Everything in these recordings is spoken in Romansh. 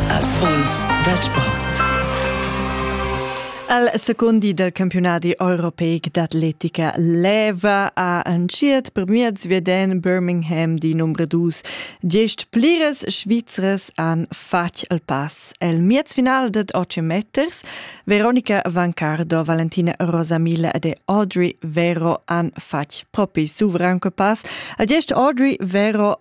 Erfolgs dal sport. Al secondi del campionati europeic d'atletica leva a entschiet per miez veden Birmingham di numero dus. Diesch pliras Svizras han fatg il pass. El miez final ded 8 meters Veronica Vancardo, Valentina Rosamila e Audrey Vero han fatg propi suvran pass. A diesch Audrey Vero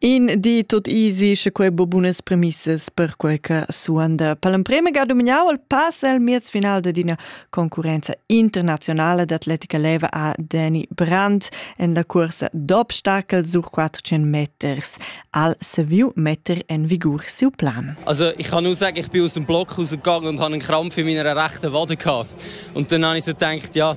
In di tot easy, sche quei bo bunas premissas per quei che suonda. Per l'emprema ga dumignau il pass al miez final d'ina concurenza internazionale d'atletica leva a Danny Brandt en la cursa d'obstacol sur 400 meters al Seville metter en vigur siu plan. Also ich kann nur sagen, ich bin aus dem Block rausgegangen und habe einen Krampf in meiner rechten Wade gehabt. Und dann habe ich so gedacht, ja,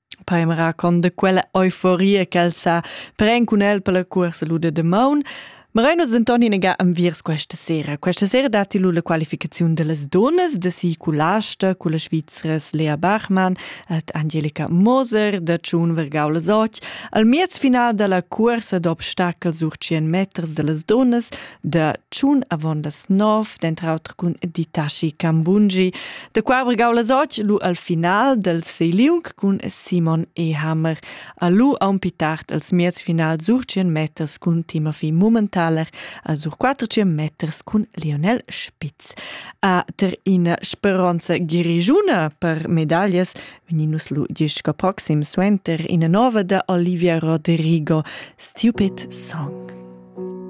Poi mi racconta quella euforia ch'el sa pren cun el per la cuorsa lu de damaun. Ma rein nus denton inaga enviers questa sera. Questa sera datti lu la qualificaziun dellas donnas de si Culasta con la Svizras Lea Bachmann et Angelika Moser da Tschun Vergau les Och al miez final dalla cuorsa d'obstacel sur 100 meters dellas donnas da tschun avon las nov, denter auter cun Ditashi Cambungi, da qua bregau las och lu al final del Seiliung cun Simon E. Hammer, a lu aun pi tard als miez final sur 100 meters cun Timothy Mummentaler, a sur 400 meters cun Lionel Spitz. A ter in speronza girigiuna per medallas veninus lu disco proxim suenter ina nova da Olivia Rodrigo, Stupid Song.